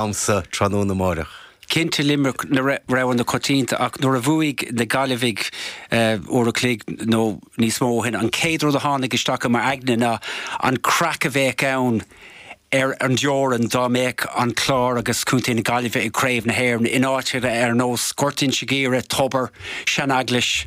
agamsa tráthnóna amáireach. Cinnte Limerick na roghanna coitianta ach nuair a bhuaigh na Gaillimhigh uair an chloig nó níos mó ó shin, an chéad rud a tháinig isteach i m'aigne ná an craic a bheadh ann ar an dteorainn dá mbeadh an Clár agus Contae na Gaillimhe i gCraobh na hÉireann in áiteanna ar nós Gort Inse Guaire, Tobar, Seaneaglais.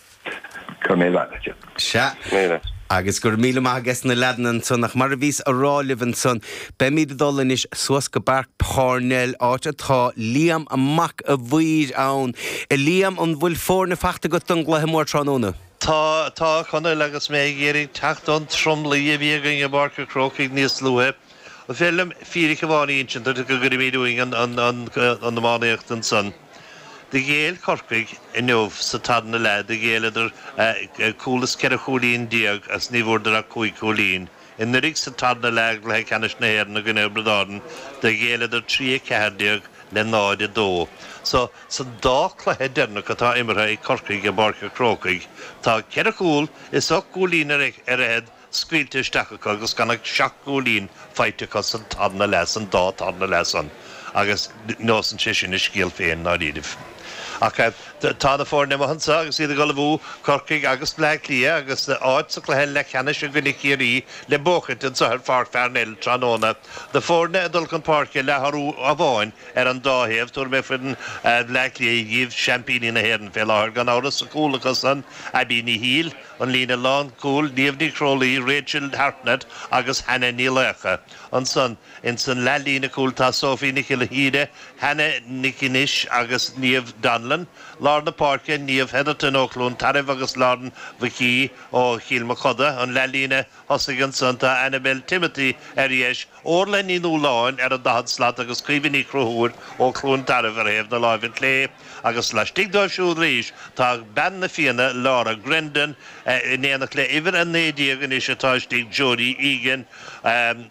Go raibh míle maith agat. Sea, agus go raibh míle maith ages na leaideanna ansan, ach mar a bhíos a rá libh ansan, beimid ag dul anois suas go Páirc Pharnell, áit atá Liam Mac a' Mhaoir ann. A Liam, an bhfuil foirne faighte agat don gcluiche mór tráthnóna? Tá, tá, Conall, agus mé ag iarraidh teacht ón tromluí a bhí againn i bPáirc an Chrócaigh níos luaithe. Is féidir liom fíric amháin a insint duit go gcuirfimid dúinn an iománaíocht ansan. Do ghéill Corcaigh inniu sa tarna leath, do ghéilleadar cúl is ceithre chúilín déag is ní bhfuaireadar ach cúig chúilín. Anuraidh sa tarna leath i gcluiche ceannais na hÉireann i gcoinne Thiobraid Árann do ghéilleadar trí a ceathair déag le náid a dó. So, sa dá cluiche deireanach atá imeartha ag Corcaigh i bPáirc an Chrócaigh tá ceithre chúl is ocht gcúilín ar fhichead scaoilte isteach acu agus gan ach seacht gcúilín faighte acu san tarna leath, san dá tarna leath san, agus neosann sé sin a scéal féin i ndáiríribh. Ach tá na foirne amuigh anso agus iad ag ullmhú, Corcaigh agus Bleá Cliath, agus áit sa cluiche leathcheannais i gcoinne Chiarraí le buachaint anso ar Pháirc Pharnell tráthnóna. Na foirne ag dul chun páirce le hathrú amháin ar an dá thaobh, tabharfaidh mé foireann Bhleá Cliath díbh, seaimpíní na hÉireann fé láthair gan amhras, sa chúl acu san, Abbie Ní Shiail, An líne lánchúil, Niamh Ní Chrólaí, Rachel Hartnett agus Hannah Ní Laocha. Ansan ins an leathlíne chúil tá Sophie Nic Ghiolla Thíre, Hannah Nic Innis agus Niamh Donlon. Lár na páirce, Niamh Hetherton ó Chluain Tarbh agus Lauren Magee ó Chill Mochuda. An leathlíne thosaigh, Ansan tá Annabel Timothy ar dheis, Órla Ní Nualláin ar an daichead slat agus Caoimhe Ní Chonchúir ó Chluain Tarbh ar thaobh na láimhe clé agus laistigh dóibh siúd arís tá bean na Fianna, Laura Grendon, in éineacht le uimhir 19 anois atá istigh, Jodie Egan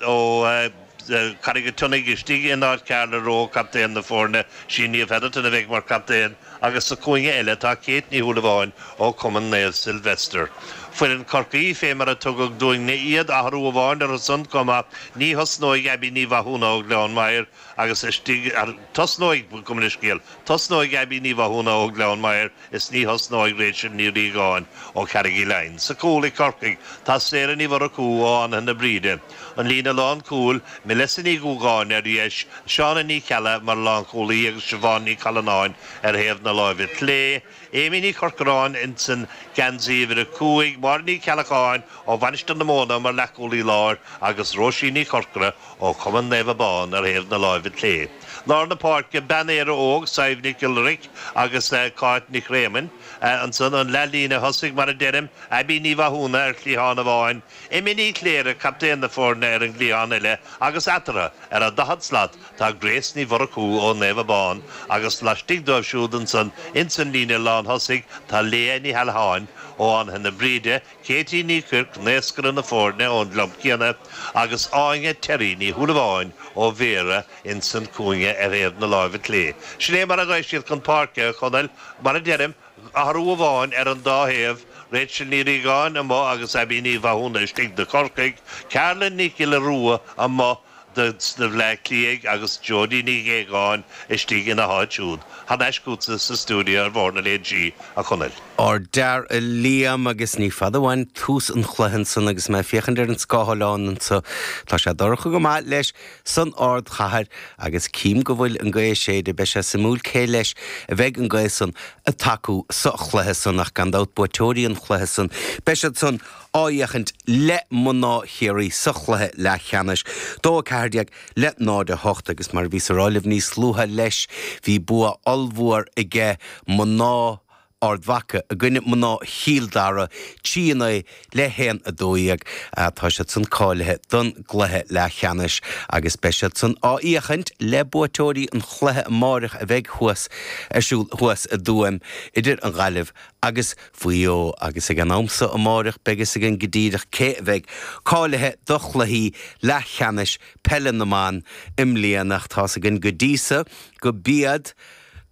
ó Charraig an tSionnaigh istigh in áit Carla Rowe, captaen na foirne, sí Niamh Hetherton a bheidh mar chaptaen. agus sa cúinne eile tá Kate Ní Shúilleabháin ó Cumann Naomh Sylvester. Foireann Chorcaí, fé mar a tugadh dúinne iad, athrú amháin orthu san chomh maith, ní thosnóidh Abbie Ní Mhathúna ó Ghleann Maghair agus istigh ar, tosnóidh, gabh mo leithscéal, tosnóidh Abbie Ní Mhathúna ó Ghleann Maghair is ní thosnóidh Rachel Ní Riagáin ó Charraig Uí Leighin. Sa chúl ag Corcaigh tá Sarah Ní Mhurchú ó Fhánaithe na Bríde. An líne lánchúil, Melissa Ní Dhúgáin, ar dheis, Shauna Ní Cheallaigh mar lánchúlaí agus Siobhán Ní Challanáin ar thaobh na láimhe clé, Amy Ní Chorcoráin insan geansaí uimhir a cúig, Máire Ní Cheallacháin ó Mhainistir na Móna mar leathchúlaí láir agus Rosie Ní Chorcora ó Chumann Naomh Abán ar thaobh na láimhe clé. Lár na páirce, Bean Éire Óg, Sadhbh Nic Iolraic agus Cáit Nic Réamoinn. Ansan an leathlíne thosaigh, mar a deirim, Abbie Ní Mhathúna ar chliathán amháin, Emma Ní Chléirigh, captaen na foirne ar an gcliathán eile agus eatarthu, ar an daichead slat, tá Grace Ní Mhurchú ó Naomh Abán agus laistigh dóibh siúd ansan ins an líne lánthosaigh tá Leah Ní hAileacháin ó Fhánaithe na Bríde, Katie Ní Chuirc, naoscaire na foirne ón gclub céanna, agus Áine Terry Ní Shúilleabháin ó Bhéara insan cúinne ar thaobh na láimhe clé. Sin é mar a ghaibh siad chun páirce, a Chonaill, mar a deirim, Athrú amháin ar an dá thaobh, Rachel Ní Riagáin, amuigh, agus Abbie Ní Mhathúna, istigh, do Chorcaigh, Carla Nic Giolla Rua, amuigh, do Bhleá Cliaigh, agus Jodi Nic Aogáin, istigh, ina háit siúd, thar n-ais chugatsa sa stiúideo ar Bhóthar na Léinsí, a Chonaill. Ardfhear a Liam, agus ní fada uainn tús an chluiche ansan, agus mé ag féachaint ar an scáthlán anso, tá sé dorcha go maith leis, san ardchathair agus cím go bhfuil an ghaoth ag séideadh beidh sé suimiúil cé leis a bheidh an ghaoth san ag tacú sa chluiche san ach gan dabht buaiteoirí an chluiche san beidh siad san á fhéachaint le mná Chiarraí sa chluiche leathcheannais dó 14 le 0 8 agus mar a bhíos á rá libh níos luaithe leis bhí bua ollmhór aige mná Ard Mhaca i gcoinne mná Chill Dara, 3-9 le 1, 12. Tá siadsan cáilithe don gcluiche leathcheannais agus beidh siadsan á fhéachaint le buaiteoirí an chluiche amáireach a bheidh thuas ar siúl thuas i dTuaim idir an Ghaillimh agus Mhaigh Eo agus ag an am so amáireach beidh fhios againn go díreach cé a bheidh cáilithe do chluichí leathcheannais peile na mban i mbliana ach tá's againn go dtí so go b'iad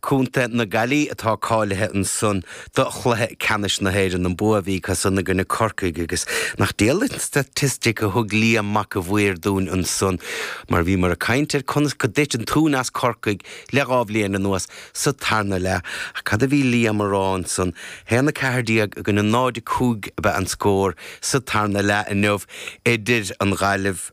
Contae na Gaillí atá cáilithe ansan do chluiche ceannais na hÉireann, an bua a bhí acusan i gcoinne Corcaigh agus nach diail an staitistic a thug Liam Mac an Mhaoir dúinn ansan mar bhíomar ag caint ar conas go dtit an tóin as Corcaigh le dhá bhliain anuas sa tarna leath ach cad a bhí Liam á rá ansan, haon a ceathair déag i gcoinne náid a cúig ab ea an scór sa tarna leath inniu idir an Ghaillimh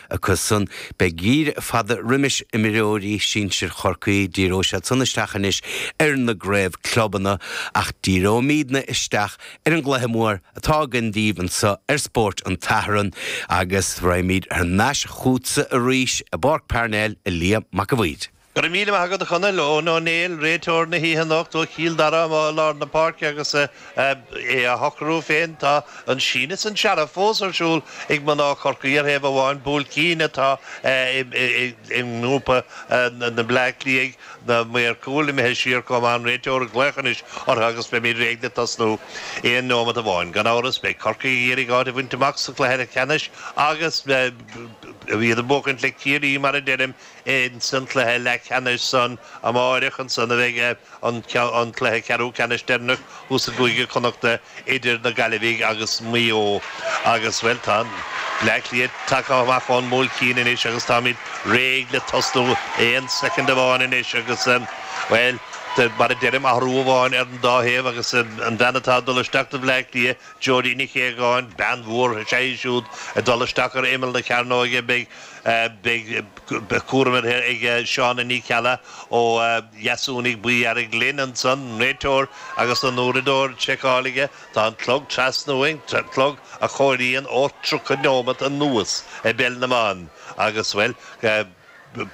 Acusan, beidh geimhreadh fada roimis imreoirí sinsir Chorcaí, díreoidh siad san isteach anois ar an gcraobh clubanna, ach díreoimídne isteach ar an gcluiche mór atá againn daoibh anso ar Spóirt an tSathairn, agus raghaimíd thar n-ais chútsa arís i bPáirc Parnell, a Liam Mac an Mhaoir. Go raibh míle maith agat a Chonaill. Eoin Ó Néill, réiteoir na hoíche anocht ó Chill Dara amuigh i lár na páirce agus é á shocrú féin. Tá an síneadh is an searradh fós ar siúl ag mná Chorcaí ar thaobh amháin, bualadh cinn atá i ngrúpa na mBleá Cliathach, na maoir cúil imithe siar chomh maith. An réiteoir ag glaoch anois orthu agus beimid réidh le tosnú aon neomat amháin. Gan amhras beidh Corcaigh ag iarraidh áit a bhaint amach sa chluiche leathcheannais agus iad ag buachaint le Ciarraí, mar a deirim, Insan cluiche leathcheannais san amáireach ansan a bheidh an cluiche ceathrú ceannais deireanach thuas i gCúige Connachta idir na Gaillimhigh agus Maigh Eo. Agus, bhuel, tá Bleá Cliath tagtha amach ón mbualadh cinn anois agus táimid réidh le tosnú aon soicind amháin anois agus, bhuel, mar a deirim, athrú amháin ar an dá thaobh agus an bhean atá ag dul isteach do Bhleá Cliath, Jodie Nic Aogáin, bean mhór, is ea í siúd ag dul isteach ar imeall na cearnóige. Beidh. Beidh cúram uirthi ag Shauna Ní Cheallaigh ó Dheasúnaigh Buí Airglinn ansan, an réiteoir agus an uaireadóir seiceálta aige. Tá an clog trasna uainn, clog a chomhairíonn ó 30 neomat anuas i bPeil na mBan. Agus, bhuel,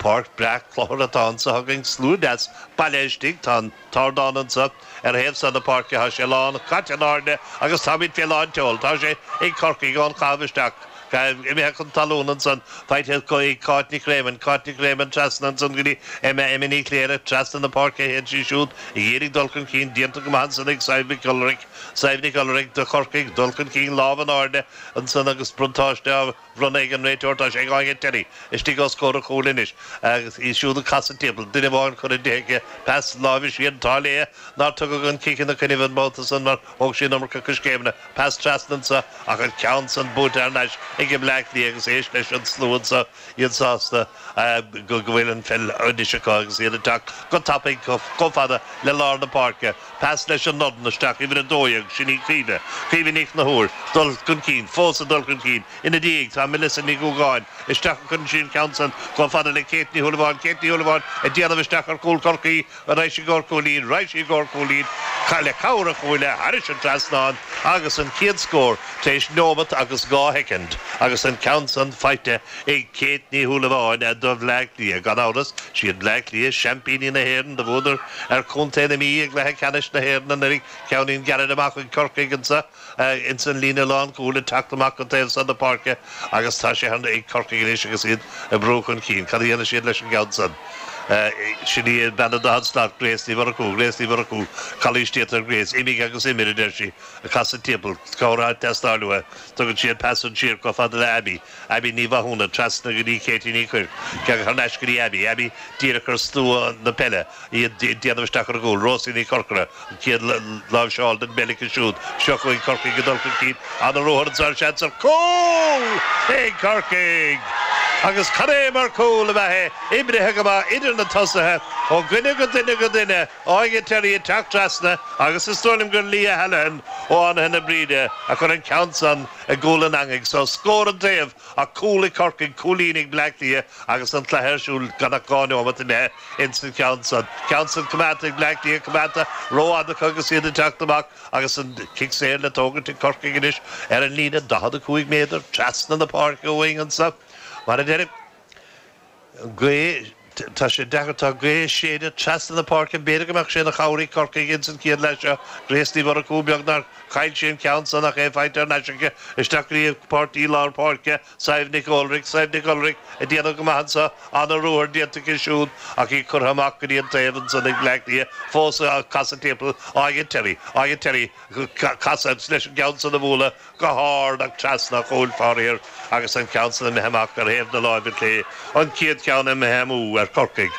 páirc breá cluthar atá anso againn, slua deas bailithe istigh, tá an. t-ardán anso, ar thaobh so na páirce tá sé lán, caite in airde agus táimid fé lán tseoil. Tá sé ag Corcaigh ón chaitheamh isteach, imithe chun talún ansan, faighte acu ag Cáit Nic Réamoinn, Cáit Nic Réamoinn trasna ansan go dtí Emma, Emma Ní Chléirigh, trasna na páirce a théann sí siúd ag iarraidh dul chun cinn, déanta go maith ansan ag Sadhbh Nic Ualghairg, Sadhbh Nic Ualghairg de Chorcaigh, dul chun cinn lámh in airde ansan agus buntáiste á Bhronnadh ag an réiteoir tá sé ag Áine Terry istigh os comhair an chúil anois agus í siúd ag casadh timpeall, duine amháin curtha di aici, pas láimhe siar, an t-ádh léi nár tugadh an cic ina coinnibh an babhta san mar thóg sí an iomarca coiscéimeanna, pas trasna anso ach an ceann san buailte thar nais ag Bleá Cliath agus éist leis an slua anso, iad sásta go bhfuil an pheil anois acu agus iad ag teacht go tapaidh chomh fada le lár na páirce. Pas leis an ndorn isteach, uimhir 12, sin í Caoimhe, Caoimhe Ní Chonchúir, dul chun cinn, fós ag dul chun cinn. Ina diaidh tá Melissa Ní Dhúgáin, isteach a chuireann sí an ceann san, chomh fada le Kate Ní Shúilleabháin, Kate Ní Shúilleabháin ag déanamh isteach ar chúl Chorcaí, an raghaidh sí i gcomhair cúilín, raghaidh sí i gcomhair cúilín, le cabhair an chuaille, thairis an trasnán, agus an chéad scór tar éis neomat agus dhá shoicind, agus an ceann san faighte Ag Kate Ní Shúilleabháin do Bhleá Cliath, gan amhras, is iad Bleá Cliath seaimpíní na hÉireann do bhuadar ar chontae na Mí i gcluiche ceannais na hÉireann anuraidh. Ceainnín gairid amach chuig Corcaigh anso ins an líne lánchúil ag teacht amach go taobh san na páirce agus tá sé ag Corcaigh anois agus iad ag brú chun cinn. Cad a dhéanfaidh siad leis an gceann san? Sin í an bhean a dhein slad, Grace Ní Mhurchú. Grace Ní Mhurchú, calaois déanta ar Grace, imigh agus imir, a deir sí, ag casadh timpeall. Cabhair ag teastáil uaithi. Tugann sí an pas san siar chomh fada le Abbie. Abbie Ní Mhathúna, trasna go dtí Katie Ní Chuirc, ceann thar n-ais go dtí Abbie, Abbie díreach ar stua na peile, í ag déanamh isteach ar an gcúl, Rosie Ní Chorcora, an chéad láimhseáil den bpeil aici siúd, seo chugainn Corcaigh ag dul chun cinn, an-ruathar an sársheans ar chúl ag Corcaigh! Agus cad é mar chúl ab ea é, oibrithe go maith idir na tosaithe, ó dhuine go duine go duine, Áine Terry ag teacht trasna agus is dóigh liom gur Leah Hallihan ó Fhánaithe na Bríde a chuir an ceann san i gcúl an eangaigh so. Scór an taobh ach cúl ag Corcaigh, cúilín ag Bleá Cliath agus an cluiche ar siúl gan ach dhá neomat imithe ins an cheann san. Ceann san coimeádta ag Bleá Cliath, coimeádta ró-fhada acu agus iad ag teacht amach agus an cic saor le tógaint ag Corcaigh anois ar an líne 45 méadar trasna na páirce uainn anso mar a deirim. gaoth, tá sé deacair, tá gaoth séidte trasna na páirce, b'fhéidir go mbeadh sé ina chabhair ag Corcaigh ins an chéad leath seo, Grace Ní Mhurchú, beag nár chaill sí an ceann san ach é faighte ar ais aici, isteach go dtí a páirtí lár páirce, Sadhbh Nic Ualraig, Sadhbh Nic Ualraig ag déanamh go maith anso, an-ruathar déanta aici siúd ach í curtha amach go dtí an taobh ansan ag Bleá Cliath, fós ag casadh timpeall, Áine Terry, Áine Terry, casadh, leis an gceann san a bhualadh, go hard ach trasna an chúil faraor agus an ceann san imithe amach ar thaobh na láimhe clé, an chéad cheann imithe amú ar Chorcaigh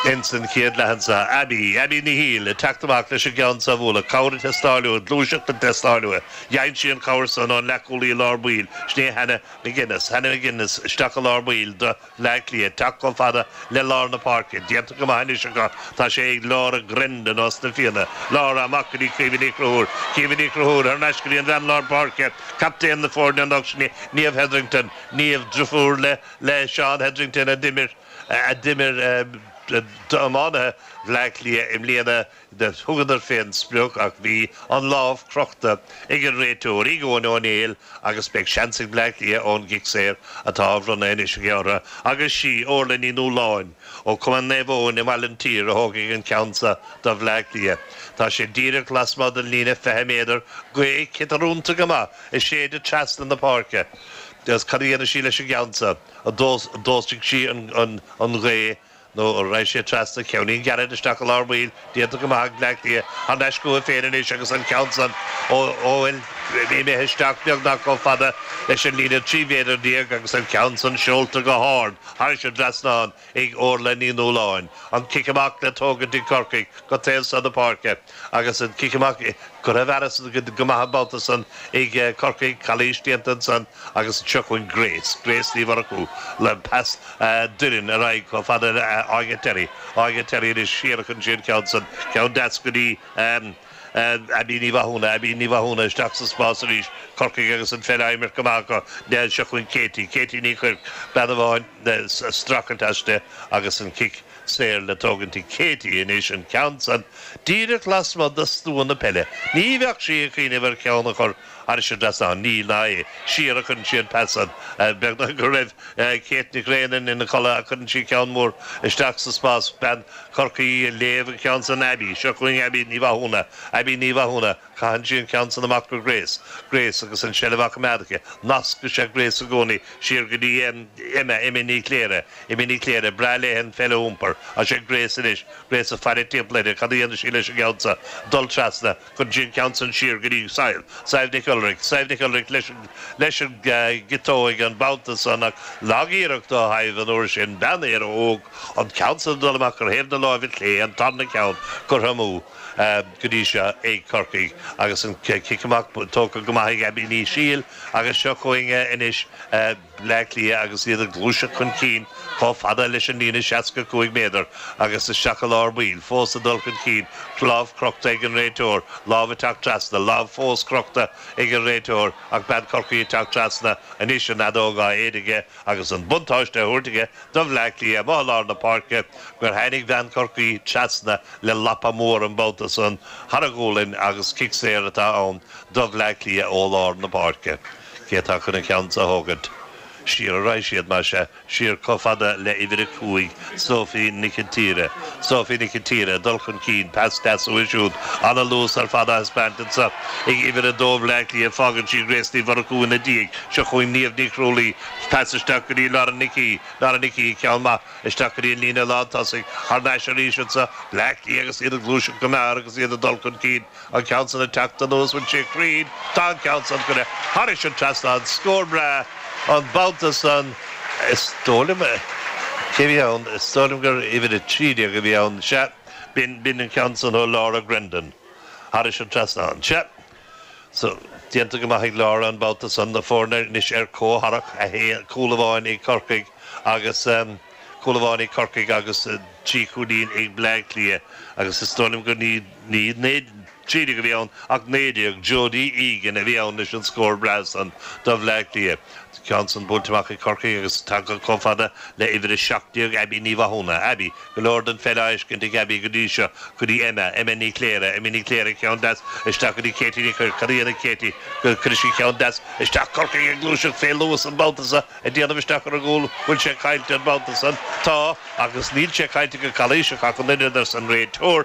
ins an chéad leath anso. Abby, Abby Ní Shíl, ag teacht amach leis an gceann san a bhualadh. Cabhair ag teastáil uaithi, gluaiseacht ag teastáil uaithi. Gheibheann sí an chabhair san, ón leathchúlaí lár baill, sin é Hannah McGuinness, Hannah McGuinness, isteach i lár baill, do, Bhleá Cliath ag teacht chomh fada le lár na páirce. Déanta go maith anois acu. Tá sé ag Laura Grendon ós na Fianna. Laura amach go dtí Caoimhe Ní Chonchúir. Caoimhe Ní Chonchúir thar n-ais go dtí an bhean lár páirce, captaen na foirne anocht, sin, Niamh Hetherington. Niamh, driofúr le le Seán Hetherington a d'imir a d'imir d'iománaithe Bhleá Cliath i mbliana. Thugadar fén sprioc ach bhí an lámh crochta ag an réiteoir, Eoghan Ó Néill, agus beidh seans ag Bleá Cliath ón gcic saor atá á bhronnadh anois aige orthu, agus sí Orla Ní Nualláin ó Cumann Naomh Eoin i mBaile an tSaoir a thógfaidh an ceann seo do Bhleá Cliath. Tá sé díreach lasmuigh den líne 20 méadar, gaoth ciotarúnta go maith ag séideadh trasna na páirce, agus cad a dhéanfaidh sí leis an gceann seo? D'fhostaigh sí an ghaoth. nó a raibh sé trasna ceainnín gearr isteach i lár baill déanta go maith ag Bleá Cliath thar n-ais chucu féin anois agus an ceann san ó fhuil imithe isteach beagnach chomh fada leis an líne trí mhéadar déag agus an ceann san seolta go hard thairis an dtrasnán ag Órla Ní Nualláin an cic amach le tógaint ag Corcaigh go taobh san na páirce. Agus an cic amach, curtha i bhfearas go maith an babhta san ag Corcaigh, calaois déanta ansan agus anseo chugainn Grace, Grace Ní Mhurchú, le pas Doireann ar aghaidh chomh fada le Áine Terry, Áine Terry anois siar a chuireann sí an ceann san, ceann deas go dtí Abbie Ní Mhathúna, Abbie Ní Mhathúna isteach sa spás arís, Corcaigh agus an pheil á imirt go maith acu, anseo chugainn Katie, Katie Ní Chuirc, bean ag baint streachailt aisti agus an cic. saor le tógaint ag Katie anois, an ceann san díreach lasmuigh de stua na peile. Ní bheadh sí ag cuimhneamh ar cheann a chur thairis as san, níl ná é. Siar a chuireann sí an pas san. Beagnach go raibh Kate Nic Réamainn ina codladh ach cuireann sí ceann mór isteach sa spás. Bean Chorcaí ag léamh an ceann san, Abbie. Seo chugainn Abbie Ní Mhathúna. Abbie Ní Mhathúna. Caitheann sí an ceann san amach go Grace. Grace, agus an tseilbh á coimeád aici, anois tá sé ag Grace i gcónaí siar go dtí em. Emma, Emma Ní Chléirigh. Emma Ní Chléirigh, Breá léi an pheil a iompar. Tá sé ag Grace anois. Grace, ag faire timpeall uirthi, Cad a dhéanfaidh sí leis an gceann seo? Dul trasna. Cuireann sí an ceann san siar go dtí Sadhbh. Sadhbh Nic Ualraic. Sadhbh Nic Ualraic, leis an, leis an eh, gciotóig an babhta san ach, lagiarracht ó Shadhbh an uair sin, bean Éire Óg, an ceann san ag dul amach ar thaobh na láimhe clé, an tarna ceann curtha amú. Go dtí seo ag Corcaigh agus an cic amach tógtha go maith ag Abbie Ní Shiail agus seo chugainn anois Bleá Cliath agus iad ag gluaiseacht chun cinn chomh fada leis an líne 65 méadar agus isteach i lár baill, fós ag dul chun cinn, lámh crochta ag an réiteoir, lámh ag teacht trasna, lámh fós crochta ag an réiteoir ach bean Chorcaí ag teacht trasna anois, an fheadóg á séideadh aige. agus an buntáiste á thabhairt aige do Bhleá Cliath. Amuigh i lár na páirce gur tháinig bean Chorcaí trasna le lapa mór an babhta san thar a gualainn agus cic saor atá ann do Bhleá Cliath ó lár na páirce. Cé atá chun an ceann san a thógaint? Siar a raghaidh siad, más ea, siar chomh fada le uimhir a cúig. Sophie Nic an tSaoir. Sophie Nic an tSaoir, dul chun cinn, pas deas uaithi siúd, ana luas ar fad á thaispeáint anseo ag uimhir 2 Bhleá Cliath, fágann sí Grace Ní Mhurchú ina diaidh, seo chugainn Niamh Ní Chrualaoi, pas isteach go dtí Lauren Nic Aoidh, Lauren Nic Aoidh, ceann maith, isteach go dtí an líne lántosaigh, thar n-ais arís anseo, Bleá Cliath agus iad ag gluaiseacht go mear agus iad ag dul chun cinn, An ceann san ag teacht anuas an bhfuil sé cruinn, tá an ceann san curtha thairis an trasnán, scór breá an babhta san. Is dóigh liom, cé bhí ann, is dóigh liom gur uimhir a trí déag a bhí ann, sea, b'in, b'in an ceann san ó Laura Grendon, thairis an trasnán, sea. So, déanta go maith ag Laura an babhta san, na foirne anois ar comhtharrac, a haon, cúl amháin ag Corcaigh agus. Cúl amháin ag Corcaigh agus trí chúilín ag Bleá Cliath agus is dóigh liom nach 13 a bhí ann ach 19, Jodie Egan a bhí ann leis an scór breá san do Bhleá Cliath. Tá ceann san bainte amach ag Corcaigh agus tagtha chomh fada le uimhir 17 Abbie Ní Mhathúna, Abbie, go leor den pheil á fheiscint ag Abbie go dtí seo, go dtí Emma, Emma Ní Chléire, Emma Ní Chléire ceann deas isteach go dtí Katie Ní Chuirc, cad a dhéanfaidh Katie? Cuirfidh sí ceann deas isteach Corcaigh ag gluaiseacht fé luas an babhta so, ag déanamh isteach ar an gcúl go bhfuil sé caillte an babhta san. Tá, agus níl sé caillte go calaoiseach ach an oiread, arsa an réiteoir.